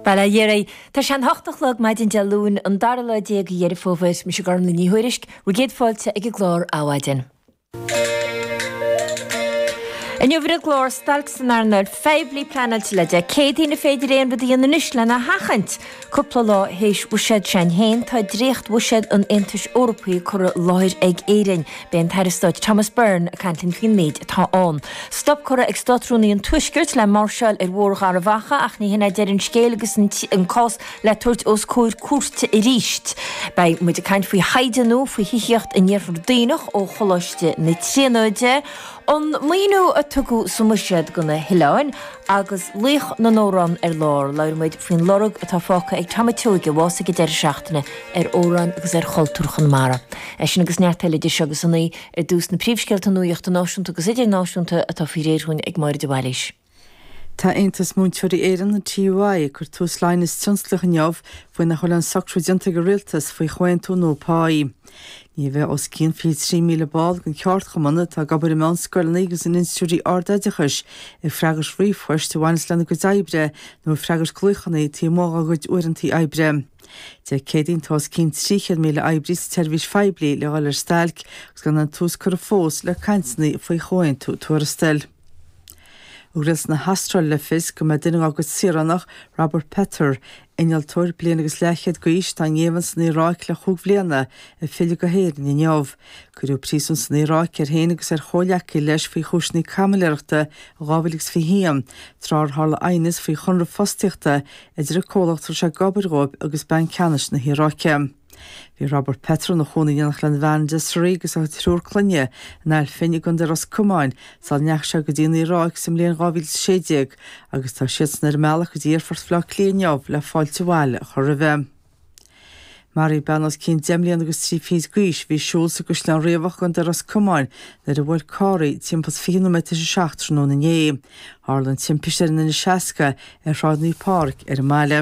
Bail ó Dhia oraibh. Tá sé a hocht a chlog maidin Dé Luain, an dara lá déag de Dheireadh Fómhair. Mise Gormlaith Ní Thuairisg, bhur gcéad fáilte ag an gclár Adhmhaidin. Inniu ar an gclár, stailc san earnáil phoiblí pleanáilte le Dé Céadaoin, an féidir aon rud a dhéanamh anois lena sheachaint? Cúpla lá théis bhuiséad s'againn féin, tá dréachtbhuiséad an Aontais Eorpaigh curtha i láthair ag Éirinn. Beidh an tAire Stáit Thomas Byrne ag caint linn faoin méid atá ann. Stop curtha ag Státrúnaí an Tuaiscirt le máirseáil ar Bhóthar Gharbhachaidh, ach ní shin é deireadh an scéil agus an cás le tabhairt os comhair cúirte arís. Beidh muid ag caint faoi thaighde nua faoi thithíocht in Iarthar Duibhneach ó Choláiste na Tríonóide, An maoiniú a tugadh sa mbuiséad do na hoileáin, agus laoch na n-amhrán ar lár, labhróidh muid faoin lorg atá fágtha ag Tom a' tSeoighe, a bhásaigh ag deireadh seachtaine, ar amhráin agus ar chultúr Chonamara. É sin agus neart eile idir seo agus a naoi. Ar dtús, na príomhscéalta nuachta náisiúnta agus idirnáisiúnta atá faoi réir dhúinn ag Máire de Bhailís. Tá Aontas Múinteoirí Éireann, an TUI, ag cur tús le aighneas tionsclaíoch inniu faoi nach bhfuil aon socrú déanta ag an Rialtas faoi chomhaontú nua páí. Ní bheidh os cionn 23,000 ball den cheardchumann, atá ag obair i meánscoileanna agus in institiúidí ardoideachais, ag freagairt ríomhphoist a bhaineas lena gcuid oibre nó ag freagairt glaochanna taobh amuigh dá gcuid uaireantaí oibre. Dé Céadaoin tá os cionn 300,000 oibrí sa tseirbhís phoiblí le dhul ar stailc agus gan aon tús curtha fós le cainteanna faoi chomhaontú tuarastail. Rialtas na hAstráile le fios go mbeidh duine dá gcuid saoránach, Robert Pether, innealtóir bliain agus leathchéad d'aois atá i ngéibheann san Iaráic le chúig bhliana, ag filleadh go hÉirinn inniu. Cuireadh príosún san Iaráic air féin agus ar chomhleacaí leis faoi chúiseanna caimiléireachta in 2021, tráth ar tharla aighneas faoi chonradh fostaíochta idir an comhlacht a raibh sé ag obair dhóibh agus Banc Ceannais na hIaráice. Bhí Robert Pether ina chónaí in éineacht lena bhean Desree agus a thriúr clainne in Ail Finn i gContae Ros Comáin sula ndeachaigh sé go dtí an Iaráic sa mbliain 2016 agus tá siadsan ar a mbealach go dtí Aerfort Bhleá Cliath inniu le fáilte abhaile a chur roimhe. Maraíodh bean os cionn deich mbliana agus trí fichid d'aois a bhí ag siúl sa gCaisleán Riabhach i gContae Ros Comáin nuair a bhuail carr í timpeall is fiche nóiméad tar éis a seacht tráthnóna inné. Tharla an timpiste ar an N60 ar Shráid Naomh Pháraic ar an mbaile.